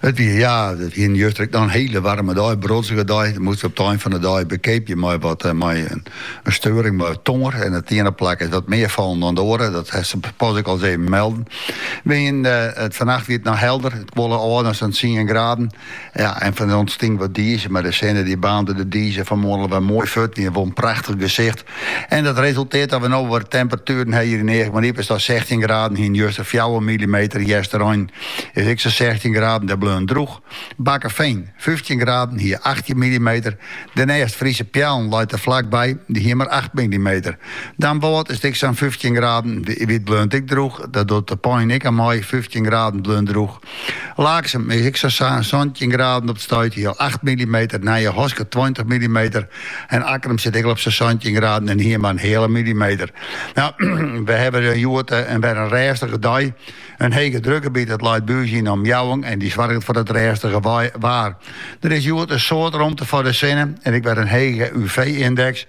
It wie ja, it hiene juster ek noch in hiele waarme dei, brodzige dei. Moast op it ein fan de dei bekeapje mei wat eh, mei in steuring mei it tongear. En it iene plak is wat mear fallen dan it oare, dat hast sapas ek al ris even melden. We hiene it, fannacht wie it noch helder, it kuolle ôf ta sa'n tsien graden. Ja, en dan ûntstie wat dize, mar de sinne dy baarnde de dize fan 'e moarn alwer moai fuort, wie wol in prachtich gesicht. En dat resulteert dat we no wat temperatueren ha hjir yn Eagmaryp is 't sa sechstjin graden hiene juster fjouwer milimeter. Easterein is ek sa sechstjin graden, dêr bleaun drûch. Bakkefean, fyftjin graden, hie achttjin milimeter. Dêrnêst Fryske Peallen leit der flak by, dy hie mar acht milimeter. Damwâld is it ek sa'n fyftjin graden. Wie 't, bleaun 't ek drûch, dat docht De Pein ek al mei, fyftjin graden bleaun drûch. Laaksum is ek sa sa'n santjin graden op it stuit, hie acht millimeter, Nijehaske tweintich millimeter en Akkrum sit ek al op sa santjin graden en hie mar in heale millimeter. Nou, we hawwe hjoed eh, in wer in rêstige dei. In hege drukgebiet dat leit by ús yn de omjouwing en dy soarget foar dat rêstige waar. Der is hjoed in soad romte foar de sinne en ek wer in hege UV-yndeks.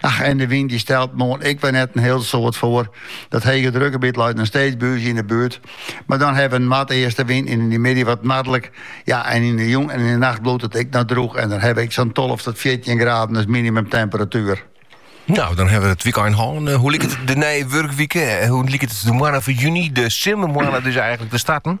Ach, en de wyn dy stelt moarn ek wer net in hiel soad foar. Dat hege drukgebiet leit noch steeds by ús yn de buert, mar dan hawwe we in noardeastewyn en yn de middei wat noardlik. Ja, en yn de jûn en yn de nacht bliuwt it ek noch drûch en dan hawwe we ek sa'n tolve tot fjirtjin graden as minimumtemperatuer. Nou, dan ha we it wykein hân. Eh, hoe liket it de nije wurkwike? Eh, hoe liket de moanne fan juny, de simmermoanne dus eigenlik te starten?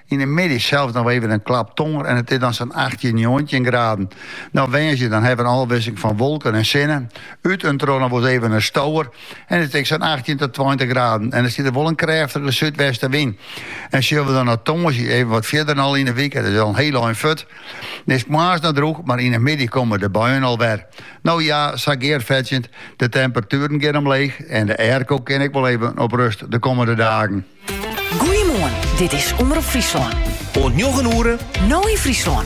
Yn 'e middei sels noch even in klap tonger en it is dan sa'n achttjin, njoggentjin graden. No woansdei dan hawwe we in ôfwisseling fan wolken en sinne. Ut en troch noch wol ris even in stower en it is ek sa'n achttjin ta tweintich graden en dan stiet der wol in krêftige súdwestenwyn. En sille we dan nei tongersdei even wat fierder en al yn 'e wike, dat is al in hiel ein fuort. Dan is it moarns noch drûch, mar yn 'e middei komme de buien al wer. No ja, sa gearfetsjend, de temperatueren gean omleech en de airco kin ek wol even op rust de kommende dagen. Goeiemoarn, dit is Omrop Fryslân. Oant njoggen oere. No yn Fryslân.